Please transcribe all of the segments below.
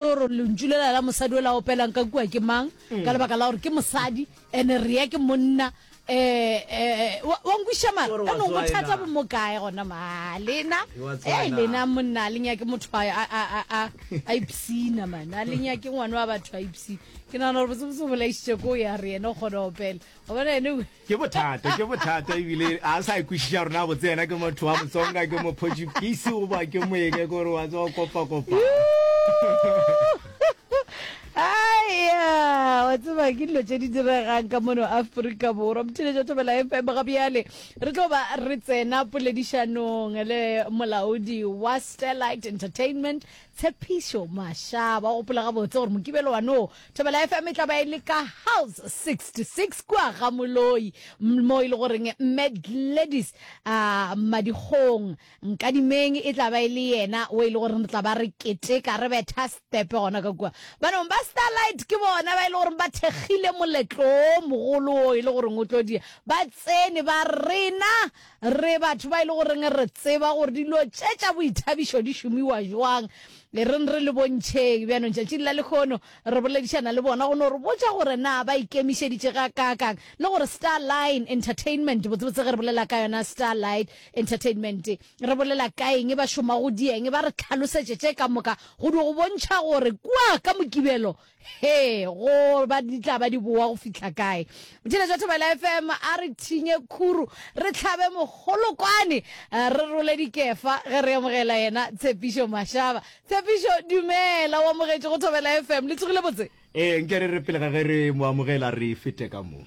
gore lentšu lela la mosadi o la opelang ka kua ke mang mm. ka lebaka la gore ke mosadi ene rea ke monna um eh, eh, eh, wa nkwiša mara anong bothata bo mo kae gona ma lena e lena monna a lenya ke motho a ipsina mane a lenya ke ngwane wa batho a ipsina ke nagana gore bosebose bolaisitše ko ya re ene o kgona opela gobana ene Ke bothata, ke bothata ebile a sa ikwešiša rona botse yena ke motho wa motsonga ke mophojipisi o ba ke moeke kore wa tsa kopa kopa. aya wa tseba ke dilo tse di diregang ka mono aforika borwa mothile jo thobela fm ga bjale re tlo ba re tsena poledišanong le molaodi wa starlight entertainment tshepišo mashaba gopola gabotse gore mokibelo wanoo Thobela FM e tla ba e le ka House 66 kua ga Moloi mo e le goreng Mme Gladys a Madikgong Nkadimeng e tla ba e le yena o e le goreng re tla ba re keteka re betha stepe gona ka kua. Banong ba Starlight ke bona ba e le goreng ba thekgile moletlo o mogolo o e le goreng o tlo dia. Ba tsene ba rena Re batho ba e le goreng re tseba gore dilo tše tša boithabišo di šomiwa jwang. E reng re le bontšheng. Bjanong tšatšing la lekgono re boledišana le bona go no re botša gore na ba ikemišeditše ga kaakang le gore Star Line Entertainment, botsebotse ge re bolela ka yona Star Light Entertainment re bolela ka eng, ba šoma go dieng, ba re tlhalosetše tše ka moka go di go bontšha gore kua ka Mokibelo he go ba di tla ba di boa go fihla kae botšhele jwa thobela fm a re thinye khuru re tlhabe mogolokwane eh, re role dikefa ge re amogela yena tshepišo mašaba tshepišo dumela o amogetše go thobela fm le tsogile botse ee nke re re pele ga ge re mo amogela re fete ka mo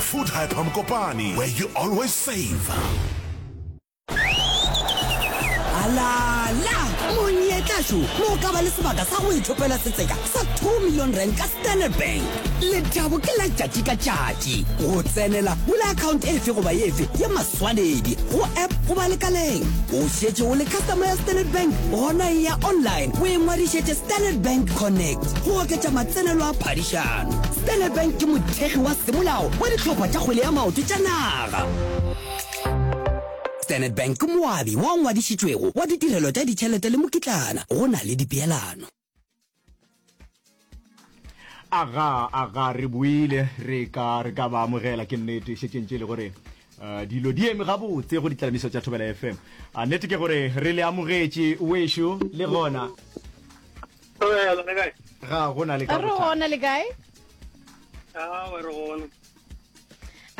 Food Hyper Mokopane, where you always save. Alala! Monyetla šo mo ka ba le sebaka sa go ithopela setseka sa 2 million rand ka Standard Bank. Lethabo ke la tšatši ka tšatši. Go tsenela, bula account efe goba efe ya maswanedi go app goba lekaleng. O šetše o le customer ya Standard Bank, gona eya online o ingwadišetše Standard Bank Connect go oketša matsenelo a phadišano. Standard Bank ke mothekgi wa semolao wa ditlhopha tša kgwele ya maoto tša naga. Standard Bank ke moabi wa ngwadišitšwego wa ditirelo tša ditšhelete le mokitlana go na le dipeelano. Aga, aga, re boile, re ka, re ka ba amogela, ke nnete, šetšeng tše le gore Uh, dilo di eme gabotse go ditlamiso tša thobela fm a uh, nnete ke gore re le amogetše wešo le gona ga go na le ka re gona le kae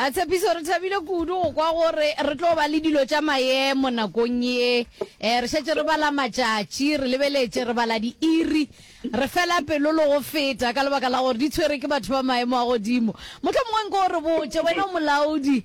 a tshepiso re thabile kudu go kwa gore re tlo ba le dilo tša maemo nakong ye um re šetse re bala matšatši re lebeletše re bala diiri re fela pelo le go feta ka lebaka la gore di tshwere ke batho ba maemo a godimo motlho mongwe nko o re botse wena o molaodi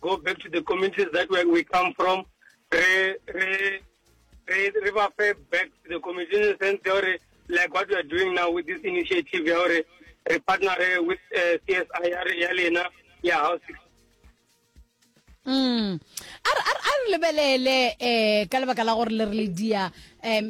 go back to the communities that where we come from re re re re ba fe back to the community in the sense ya gore like what we are doing now with this initiative ya gore re partnere with uh, eh, CSI ya lena ya house mm a re lebelele eh ka lebaka la gore le re le dia eh,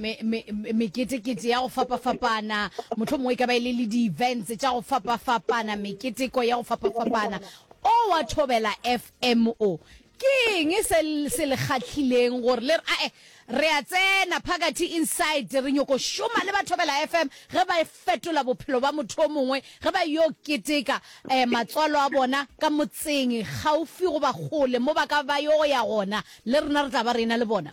meketekete ya go fapafapana motlho mongwe ka ba e le le di-events tša go fapafapana meketeko ya go fapafapana O wa Thobela FM o. Ke eng se se le kgahlileng gore le re ae re a tsena phakathi inside re nyoko šoma le ba Thobela FM ge ba fetola bophelo ba motho o mongwe ge ba yo keteka eh, matswalo a bona ka motseng gaufi goba kgole mo ba ka ba yo ya gona le rena re tla ba rena le bona.